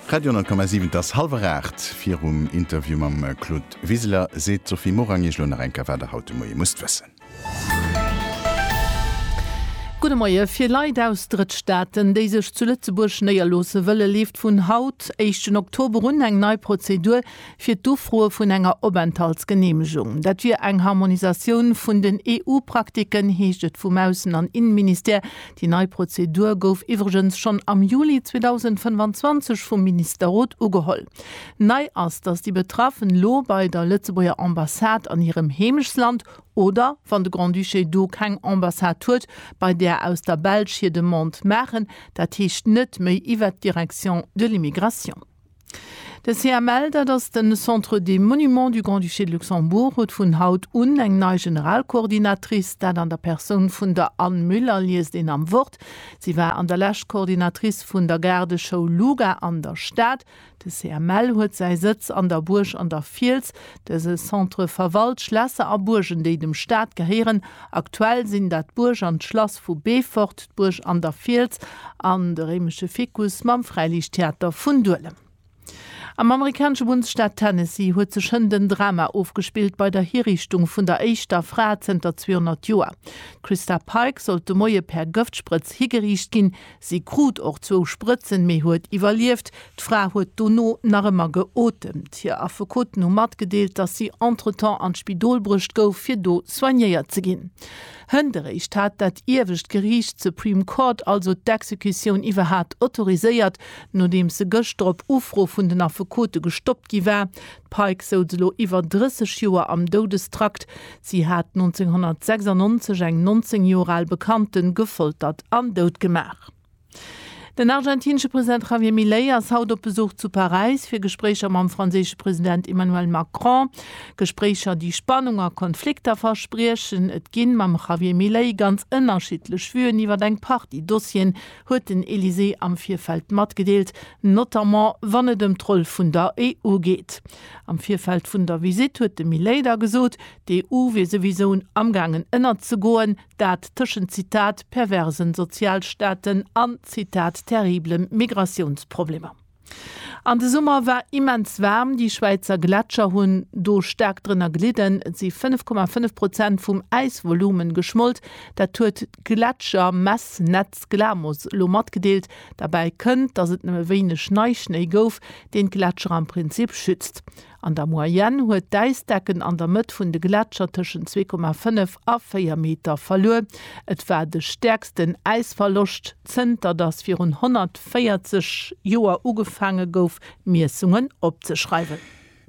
Radio 10,7 Et ass hallwer 8. Virum Interview mam Claude Wiseler seet d'Sophie Morang Iech elo nach eng Kéier, wat Der haut de Moie musst wëssen. Gudde Moie. Fir Leit aus Drëttstaaten, déi sech zu Lëtzebuerg néierloosse wëllen, leeft vun haut, éischten Oktober, un eng nei Prozedur fir d'Ufroe vun enger Openthaltsgeneemegung. Dat wier eng Harmonisatioun vun den EU-Praktiken, heescht et vum Aussen an Inneministère. Déi nei Prozedur gouf iwwregens schonn am Juli 2025 vum Ministerrot ugeholl. Nei ass, datt déi Betraffen elo bei der Lëtzebuerger Ambassade an hirem Heemechtsland oder, wann de Grand-Duché do keng Ambassade huet, bei där aus der Belsch hir Demande maachen, dat heescht net méi iwwert d'Direction de l'immigration. De CML, dat ass de Centre des Monuments du Grand-Duché de Luxembourg, huet vun haut un eng nei Generalcoordinatrice. Dat an der Persoun vun der Anne Müller, liest een am Wort. Si war an der Lescht Coordinatrice vun der Gaardeschoul Luga an der Stad. De CML huet säi Sëtz an der Buerg an der Fiels. Dëse Centre verwalt Schlässer a Buergen, déi dem Staat gehéieren. Aktuell sinn dat d'Buerg an d'Schlass vu Beefort, d'Buerg an der Fiels an de réimesche Ficus mam Fräiliichttheater vun Duelem. Am amerikanesche Bundesstaat Tennessee huet sech hënt en Drama ofgespillt bei der Hiriichtung vun der éischter Fra zënter 200 Joer. D'Christa Pike sollt de Moie per Gëftsprëtz higeriicht ginn, Si krut och zwou Sprëtzen, mee huet iwwerlieft. D'Fra huet dono nach ëmmer geotemt. Hir Affekoten hu matgedeelt, datt si entretemps an d'Spidol bruecht gouf, fir do soignéiert ze ginn. Hënt eréischt hat dat iewescht Geriicht, d'Supreme Court, also d'Exekutioun iwwerhat autoriséiert, nodeems se gëschter op Ufro vun den Affekote gestoppt gi war. D'Pike souz elo iwwer 30 Joer am Doudestrakt. Si hat 1996 eng 19 Joer al Bekannte gefoltert an doutgemaach. Den argentinesche President Javier Milei ass haut op Besuch zu Paräis fir Gespréicher mam franséische President Emmanuel Macron. Gespréicher, déi Spannung a Konflikter verspriechen. Et ginn mam Javier Milei ganz ënnerschiddlech Vuen iwwer eng Partie Dossieren, huet den Elysée am Virfeld matgedeelt, notamment wann et ëm d'Roll vun der EU geet. Am Virfeld vun der Visitt huet de Milei da gesot, d'EU wier souwisou amgaangen ënnerzegoen, dat tëschent Zitat perversen Sozialstaaten an Zitat terriblen Migratiounsproblemer. An de Summer war immens waarm, déi Schwäizer Gletscher hunn do staark drënner gelidden. Et si 5,5 Prozent vum Äisvolumen geschmolt. Dat huet d'Gletschermessnetz Glamos elo matgedeelt. Derbäi kënnt, datt et nëmme wéineg Neischnéi gouf, deen d'Gletscher am Prinzip schützt. An der Moyenne huet d'Äisdecken an der Mëtt vun de Gletscher tëschent 2,5 a 4 Meter verluer. Et war de stäerksten Äisverloscht, zënter datt virun 140 Joer ugefaange gouf, Miessungen opzeschreiwen.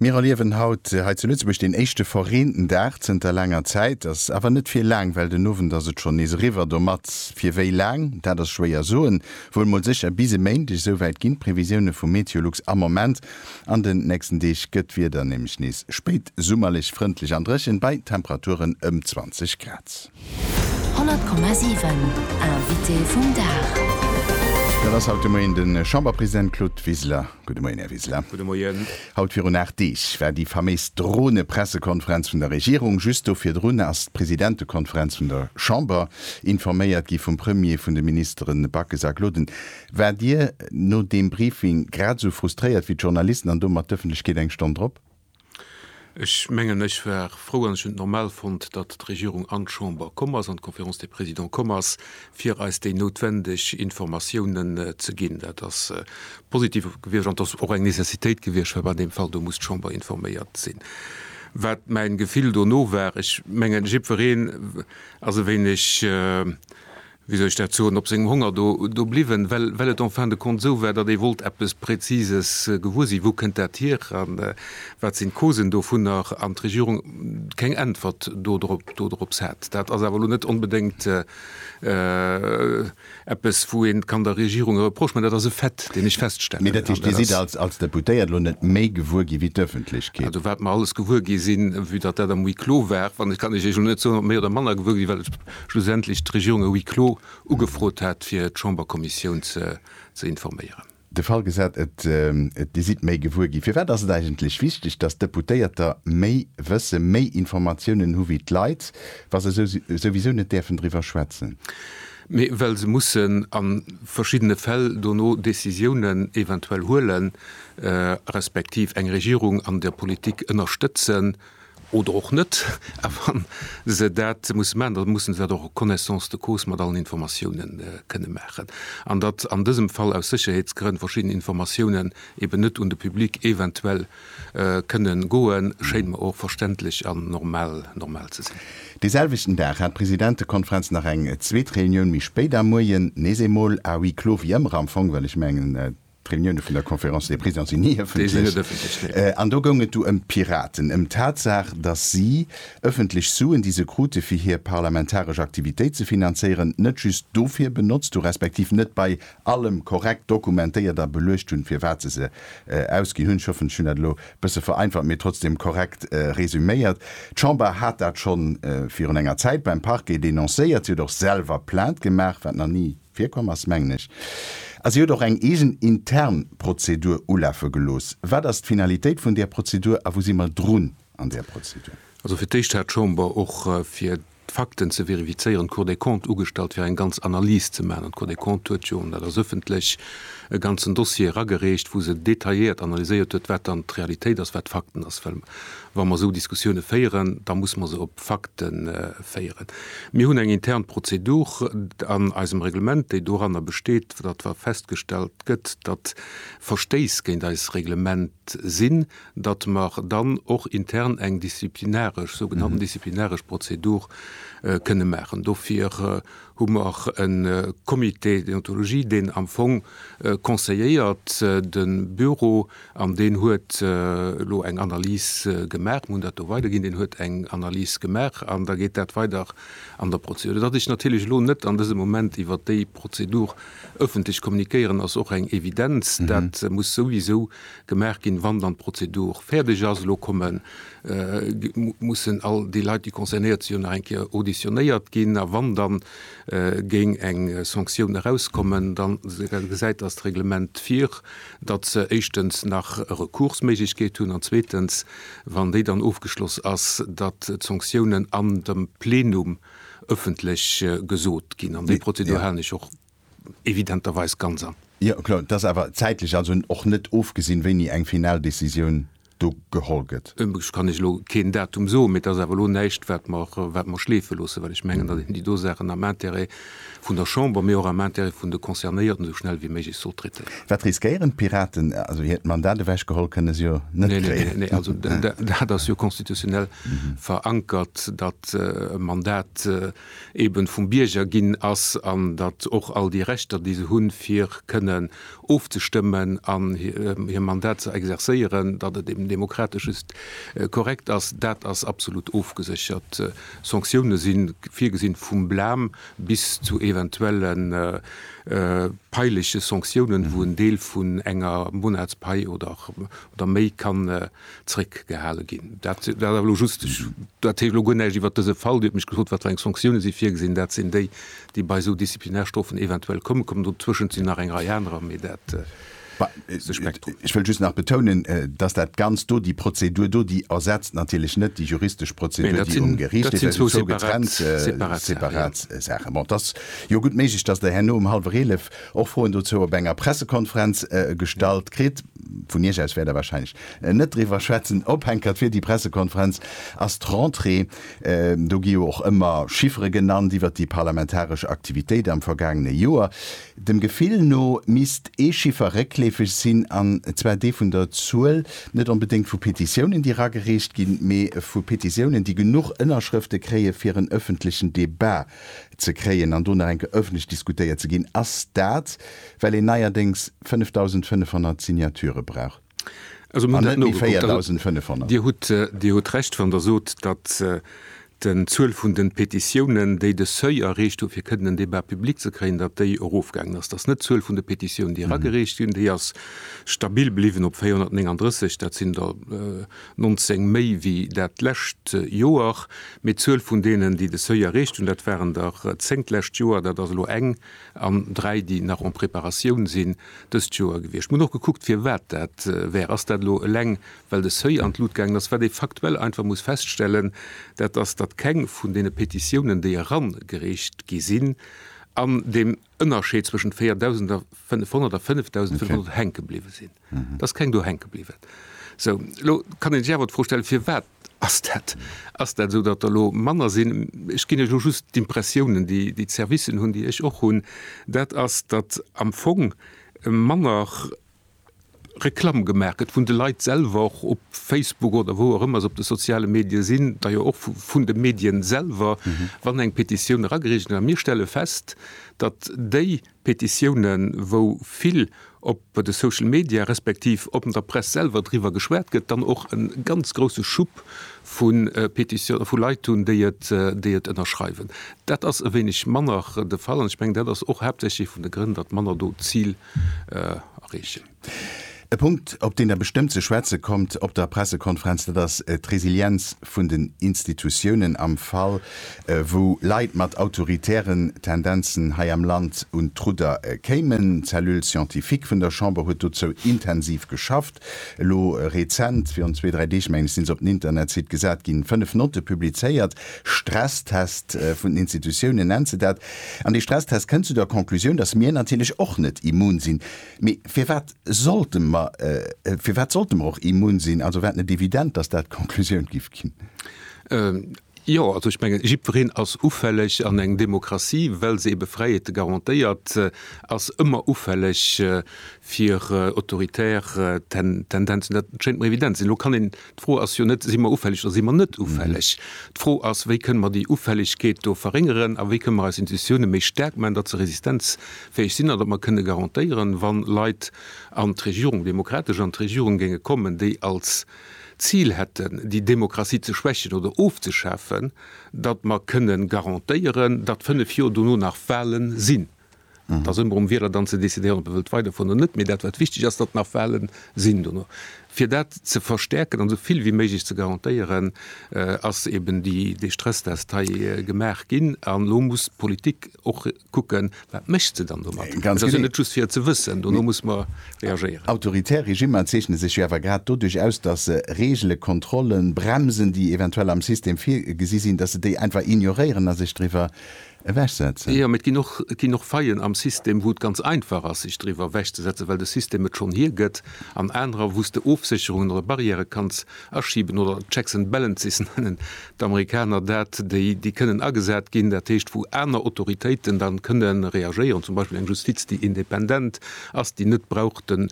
Mir erliewen haut hei zu Lëtzebuerg deen éischte verreenten Dag zënter laanger Zäit. Ass awer net fir laang, well den Owend ass et schonn nees eriwwer. Domat fir wéi laang, dat ass schwéier soen. Wuel mol sécher bis e Méindeg, esouwäit ginn d'Previsioune vu MeteoLux am Moment. An den nächsten Deeg gëtt d'Wieder nämlech nees spéitsummerlech, frëndlech an dréchen, bei Temperaturen ëm 20 Grad. 100,7 Invité vum Dag. Dat ass haut de Moien de Chamberpresident Claude Wiseler. Gudde Moien, Här Wiseler. Gudde Moien. Haut virun aacht Deeg war déi faméis Drone-Pressekonferenz vun der Regierung. Just do virdrun ass d'Presidentekonferenz vun der Chamber informéiert gi vum Premier, vun de Ministeren Backes a Gloden. Waart Dir no deem Briefing grad esou frustréiert wéi d'Journalisten an domat d'Ëffentlechkeet eng Stonn drop? Ech mengen, ech war frou an ech hunn et normal fonnt, datt d'Regierung an d'Chamber komm ass, an d'Conférence des Présidents komm ass, fir eis déi noutwendeg Informatiounen ze ginn. Dat ass positiv gewiescht an et ass och eng Nécessitéit gewiescht, well an deem Fall do muss d'Chamber informéiert sinn. Wat mäin Gefill dono war, ech mengen, jiddwereen ass e wéineg, wéi soll ech dat soen, op sengem Honger do, do bliwwen, well, well et en fin de compte esou war, datt ee wollt eppes Präzises gewuer sinn, Wou kënnt dat hier a wat sinn d'Causen dovunner? An d'Regierung keng Äntwert do drop, do drops hat. Dat ass awer elo net onbedéngt eppes, wou een kann der Regierung e Reproche man. Dat ass e Fait, deen ech feststellen. Mee dat heescht, Dir sidd als, als Deputéiert elo net méi gewuer gi wéi d'Öffentlechkeet? Also wat mer alles gewuer gi sinn, vue datt dat am Huis clos war, wann ech, kann ech Iech elo net soen, ob méi oder manner gewuer gi sinn, well ech, schlussendlech d'Regierung e Huis clos ugefrot hat, fir d'Chamberkommissioun ze informéieren. De Fall gesat, et Dir sidd méi gewuer ginn. Firwat ass et eigentlech wichteg, datt d'Deputéierter méi wëssen, méi Informatiounen hu wéi d'Leit, wa se souwisou net däerfen driwwer schwätzen? Mee well se mussen a verschiddene Fäll dono Decisiounen eventuell huelen, respektiv eng Regierung an der Politik ënnerstëtzen. oder och net, a wann se dat musse maachen, da musse se dat och en connaissance de cause mat allen Informatiounen kënne maachen. An datt an dësem Fall aus Sécherheetsgrënn verschidden Informatiounen eben net un de Public eventuell kënne goen, schéint mer och verständlech an normal ze sinn. Dee selwechten Dag hat d'Presidentekonferenz nach eng zweet Reunioun méi spéit am Moien, nees eemol à huis clos wéi ëmmer am Fong, well ech mengen, D'Reunioune vun der Conférence des Présidents sinn ni ëffentlech. An do goung et du ëm d'Piraten, ëm d'Tatsaach, datt si ëffentlech Suen, déi se krute fir hir parlamentaresch Aktivitéit ze finanzéieren, net just dofir benotzt hu respektiv net bei allem korrekt dokumentéiert a beluecht hunn, fir wat se se ausginn hunn. Ech hoffen, ech hunn dat elo e bësse vereinfacht, mee trotzdeem korrekt resuméiert. D'Chamber hat dat scho virun enger Zäit beim Parquet denoncéiert. Si huet och selwer Plainte gemaach, wat nach ni. Virkomm ass, mengen ech. A si huet och eng eegen intern Prozedur ulafe gelooss. Wat ass d'Finalitéit vun där Prozedur a wou si mer drun an där Prozedur? Also fir d'éischt hat d'Chamber, och fir d'Fakten ze verifizéieren, d'Cour des Comptes ugestallt, fir eng ganz Analys ze maachen. An d'Cour des Comptes huet jo, an dat ass ëffentlech, e ganzen Dossier eragereecht, wou se detailléiert analyséiert huet, wat dann d'Realitéit ass, wat d'Fakten ass. Well Wa mer esou Diskussioune féieren, da muss mer se op Fakte féieren. Mir hunn eng intern Prozedur an eisem Reglement, déi doranner besteet, datt wa festgestellt gëtt, datt Verstéiss géint eis Reglement sinn, datt mer dann och intern eng disziplinaresch, sougenannten disziplinaresch Prozedur kënne maachen. Dofir hu mer e Comité déontologie, deen am Fong conseilléiert de Büro, An deen huet elo eng Analys gemaach. Mir hunn dat do weiderginn. Deen huet eng Analys gemaach an da geet dat weider an der Prozedur. Datt ech natierlech elo net an dësem Moment iwwer déi Prozedur ëffentlech kommunikéieren, ass och eng Evidenz. Dat muss souwisou gemaach ginn, wann dann d'Prozedur fäerdeg ass. Elo komme mussen all déi Leit, déi concernéiert sinn, jo nach eng Kéier auditionéiert ginn. A wann dann géing eng Sanktioun erauskommen, da gesäit dat Reglement vir, datt se éischtens nach e Recoursméiglechkeet hunn an zweetens, wann déi dann ofgeschloss ass, datt d'Sanktiounen an dem Plenum ëffentlech gesot ginn. An déi Prozedur halen ech och evidenterweis ganz an. Jo, kloer. Et ass awer zäitlech also och net ofgesinn, wéini eng final Décisioun. do geholl gëtt. Ech kann Iech elo keen Datum soen, mee et ass awer elo näischt, wat mer schleefe loossen, well ech mengen, datt een déi do Saachen am Intérêt vun der Chamber, mee och am Intérêt vun de Concernéierten esou schnell wéi méiglech sollt traitéieren. Wat riskéieren d'Piraten? Also hiert Mandat ewechgeholl kënne se jo net kréien. Nee, nee, nee, also dat ass jo constitutionnel verankert, datt e Mandat eeben vum Bierger ginn ass an datt och all déi Rechter, déi se hunn, fir kënnen ofzestëmmen an hir Mandat ze exerzéieren, datt et eben demokratesch just korrekt ass, dat ass absolut ofgeséchert. Sanktioune si virgesinn, vum Blam bis zu eventuelle paileche Sanktiounen, wou en Deel vun enger Monatspai oder méi kann zréckgehale ginn. Dat war elo just, ech erziele elo guer näischt iwwert dëse Fall. Dir hutt mech gefrot, wat fir eng Sanktioune si virgesinn. Dat sinn déi, déi bei esou Disziplinarstrofen eventuell kommen. Kommen dotëschent sinn nach eng Rei anerer, mee dat ass de Spektrum. Ech wëll just nach betounen, dass dat Ganzt do, déi Prozedur do, déi ersetzt natierlech net déi juristesch Prozedur, déi um Geriicht leeft. Dat sinn zwou getrennt, separat Saachen. Bon, et ass jo gutt méiglech, dass Der herno um hallwer eelef och Froen dozou op enger Pressekonferenz gestallt kritt. Vun Iech aus wäert Der wahrscheinlech net driwwer schwätzen. Ophänkert fir déi Pressekonferenz ass d'Rentrée. Do gi jo och ëmmer Chiffere genannt iwwert déi parlamentaresch Aktivitéit am vergaangene Joer. Dem Gefill no misst ee Chiffer réckleefeg sinn, an zwar dee vun der Zuel net onbedéngt vu Petitiounen, déi eragereecht ginn, mee vu Petitiounen, déi genuch Ënnerschrëfte kréien, fir en ëffentlechen Debat ze kréien an do nach eng Kéier ëffentlech diskutéiert ze ginn, ass dat, well een neierdéngs 5.500 Signature brauch an net méi 4.500. Dir hutt Recht, wann Der sot, datt den Zuel vun de Petitiounen, déi de Seuil erreecht hu fir kënnen en Débat public ze kréien, datt déi erofgaangen ass. Dat ass net d'Zuel vun de Petitiounen, déi eragereecht ginn. Déi ass stabil bliwwen op 439. Dat sinn der. 19 méi wéi dat lescht Joer, mee d'Zuel vun deenen, déi de Seuil erreecht hunn, dat waren der 10 d'lescht Joer, dat ass elo eng an dräi, déi nach en préparatioun sinn, dëst Joer gewiescht. Mir hunn och gekuckt, firwat dat wär. Ass dat elo eleng, well de Seuil an d'Lut gaangen ass? Wat ee faktuell einfach muss feststellen, dat ass, datt keng vun deene Petitiounen, déi erangereecht gi sinn, an deem. Ënnerscheed zwëschent 4.500 a 5.500 hänke bliwwe sinn. Dat ass keng do hänke bliwwen. Esou, elo kann ee sech awer d'Fro stellen, firwat ass dat? Ass dat esou, datt der elo manner sinn? Ech ginn Iech elo just d'Impressiounen, déi d'Servicen hunn, déi ech och hunn, dat ass, datt am Fong manner Reklamm gemaach gëtt vun de Leit selwer, och op Facebook oder wou och ëmmer se op de soziale Medie sinn, da jo och vun de Medien selwer, wann eng Petitioun eragereecht gëtt. A mir stelle fest, datt déi Petitiounen, wou vill op de Social Media respektiv op der Press selwer driwwer geschwat gëtt, dann och e ganz grousse Schub vu Petitioune vu Leit hunn, déi et, déi et ënnerschreiwen. Dat ass e wéineg manner de Fall an ech mengen, dat ass och haaptsächlech ee vun de Grënn, datt manner do d'Zil erreechen. E Punkt, op deen Der bestëmmt ze schwätze kommt op der Pressekonferenz, dat ass d'Resilienz vun den Institutiounen am Fall, wou Leit mat autoritären Tendenzen hei am Land un d'Rudder kéimen. D'Cellule scientifique vun der Chamber huet dozou intensiv geschafft. elo rezent, virun zwee, dräi Deeg mengen ech, sinn se op den Internetsite gesat ginn, fënnef Notte publizéiert, Stresstest vun den Institutiounen nennt se dat. An dee Stresstest kënnt zu der Conclusioun, datt mir natierlech och net immun sinn. Mee firwat sollte mer, firwat sollte mer och immun sinn? Also war et net evident, datt dat d'Conclusioun géif ginn? Jo, also ech mengen, jiddwereen ass ufälleg an eng Demokratie, well se ebe Fräiheete garantéiert, ass ëmmer ufälleg fir autoritär Tendenzen. Dat schéint mer evident ze sinn. Elo kann een, d'Fro ass jo net, si mer ufälleg oder si mer net ufälleg? D'Fro ass, wéi kënne mer déi Ufällegkeet do verréngeren a wéi kënne mer eis Institutioune méi staark maachen, datt se resistenzfäeg sinn an datt mer kënne garantéieren, wa Leit an d'Regierung, demokratesch an d'Regierung géinge kommen, déi als. d'Zil hätten, déi Demokratie ze schwächen oder ofzeschafen, datt mer kënne garantéieren, datt fënnef Joer dono nach Wahlen sinn. Et ass ëmmer um Wieler dann ze decidéieren, ob e wëllt weiderfueren oder net, mee dat wat wichteg ass, datt nach Wahlen sinn dono. Fir dat ze verstärken an esou vill wéi méiglech ze garantéieren, ass eben dee Stresstest hei gemaach ginn. An elo muss d'Politik och. kucken, wat mécht se dann domat? Et ass jo net just fir et ze wëssen, dono muss mer reagéieren. Autoritär Regimmer zeechne sech jo awer grad doduerch aus, datt se Reegelen, Kontrollen, Bremsen, déi eventuell am System virgesi sinn, datt se déi einfach ignoréieren a sech driwwer ewechsetzen. Jo, mee et ginn och, et ginn och Faillen am System, wou et ganz einfach ass, sech driwwer ewechzesetzen, well de System et schonn hiergëtt, an anerer, wou s de Ofsécherungen oder Barrièrë kanns Aschiben oder Checks and Balances nennen d'Amerikaner dat, déi déi kënnen agesat ginn, dat heescht wou aner Autoritéiten da kënne reagéieren, zum Beispill eng Justiz déi independant ass, déi net brauch den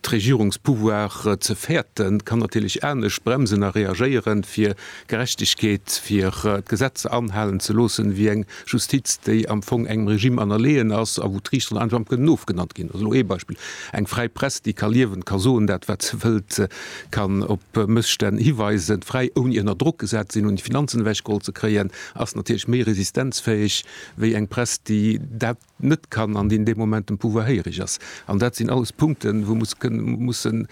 d'Regierungspouvoir ze fäerten, kann natierlech anescht bremsen a reagéieren, fir Gerechtegkeet, fir d'Gesetzer anhalen ze loossen, wéi eng Justiz, déi am Fong engem Regime anerleeën ass a wou d'Riichteren einfach am kënnen ofgenannt ginn. Ass elo ee Beispill. Eng fräi Press, déi ka liewen, ka soen dat, wat se wëllt, kann op Mësstänn hiweisen, fräi, ouni ënner Drock gesat ze sinn, ouni d'Finanzen ewechgeholl ze kréien, ass natierlech méi resistenzfäeg wéi eng Press, déi dat, net kann an deen dee Moment dem Pouvoir héirig ass. An dat sinn alles Punkten, wou mer mussen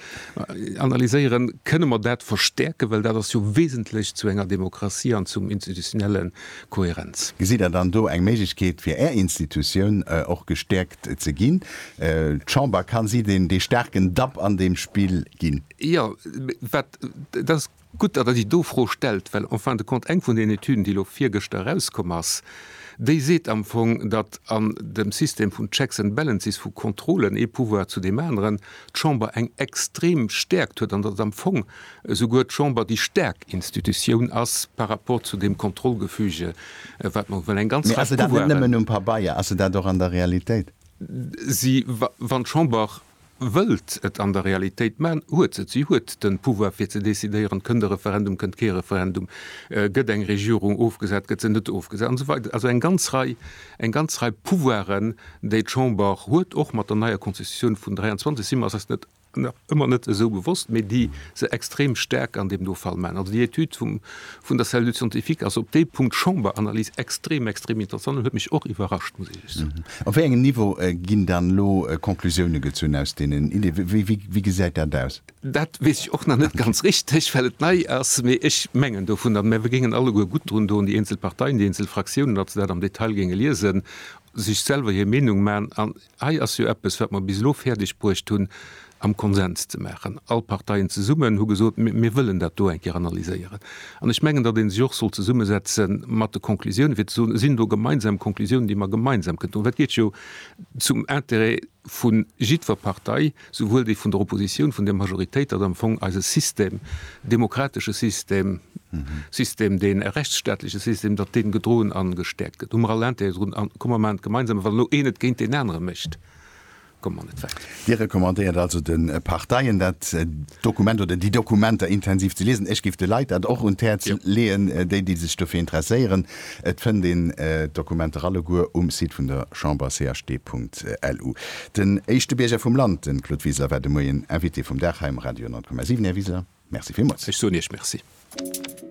analyséieren, Kënne mer dat verstärken, well dat ass jo wesentlech zu enger Demokratie an zum institutionelle Kohärenz. Gesitt Der dann do eng Méiglechkeet fir Är Institutioun och gestärkt ze ginn? D'Chamber, kann si dee staarken Dapp an deem Spill ginn? Jo, wat dat. Gutt, datt Der déi do Fro stellt, well en fin de compte eng vun den Etüden, déi elo virgëschter erauskomm ass, déi seet am Fong, datt an dem System vun Checks and Balances, vu Contrôlen ee Pouvoir zu deem aneren, d'Chamber eng extrem Stärkt huet an datt am Fong esouguer d'Chamber déi staark Institutioun ass par rapport zu deem Kontrollgefüge, wat mer hu, well eng ganz Rei Pouvoiren. Mee ass se dat net nëmmen um Pabeier, ass se dat och an der Realitéit? Si, wann d'Chamber wëllt et an der Realitéit man, huet et, si huet de Pouvoir fir ze decidéieren, kënnt e Referendum, kënnt kee Referendum, gëtt eng Regierung ofgesat, gëtt se net ofgesat an esou weider, also eng ganz Rei, eng ganz Rei Pouvoiren, déi d'Chamber huet, och mat der neier Constitutioun vun 23, si mer eis net, nach ëmmer net esou bewosst, mee déi se extrem staark an deem do Fall man. Also déi Etüd vun der Cellule scientifique, also op dee Punkt Chamberanalys, extrem, extrem interessant an huet mech och iwwerrascht, muss ech lech soen. Op wéi engem Niveau ginn dann elo Conclusioune gezunn aus deenen Iddie? Wéi gesäit dat aus? Dat weess ech och nach net ganz richteg, well et nei ass. Mee ech mengen dovunner, mä mir géingen alleguer gutt drun doen, déi eenzel Parteien, déi eenzel Fraktiounen, datt se dat am Detail géinge liesen, sech selwer hir Meenung man an, Hei ass jo eppes, wat mer bis elo fäerdeg bruecht hunn am Konsens ze maachen. All Parteien zesummen hu gesot, mir wëllen dat do eng Kéier analyséieren. An ech mengen, datt ee sech och sollt zesummesetze mat de Conclusiounen, fir ze soen, et sinn do gemeinsam Conclusiounen, déi mer gemeinsam kënnen droen. Well et geet jo zum Interêt vu jiddwer Partei, souwuel déi vun der Opposition, vun der Majoritéit, datt am Fong eise System, demokratesche System, System, deen e rechtsstaatleche System, datt dee gedroen a gestäerkt gëtt. Hu mer all Intérêt drun a komme mer an d'gemeinsame, wann elo een et géint deen anere mécht, komme mer net wäit. Dir recommandéiert also de Parteien, dat Dokument oder déi Dokumenter intensiv ze liesen. Ech géif de Leit dat och un d'Häerz leeën, déi, déi sech dofir interesséieren. Et fënnt een d'Dokumenter alleguer um Site vun der Chamber, cht.lu. Den éischte Bierger vum Land, de Claude Wiseler, war de Moien Invité vum Dag hei um Radio 10,7. Här Wiseler, Merci villmools. Ech soen Iech Merci.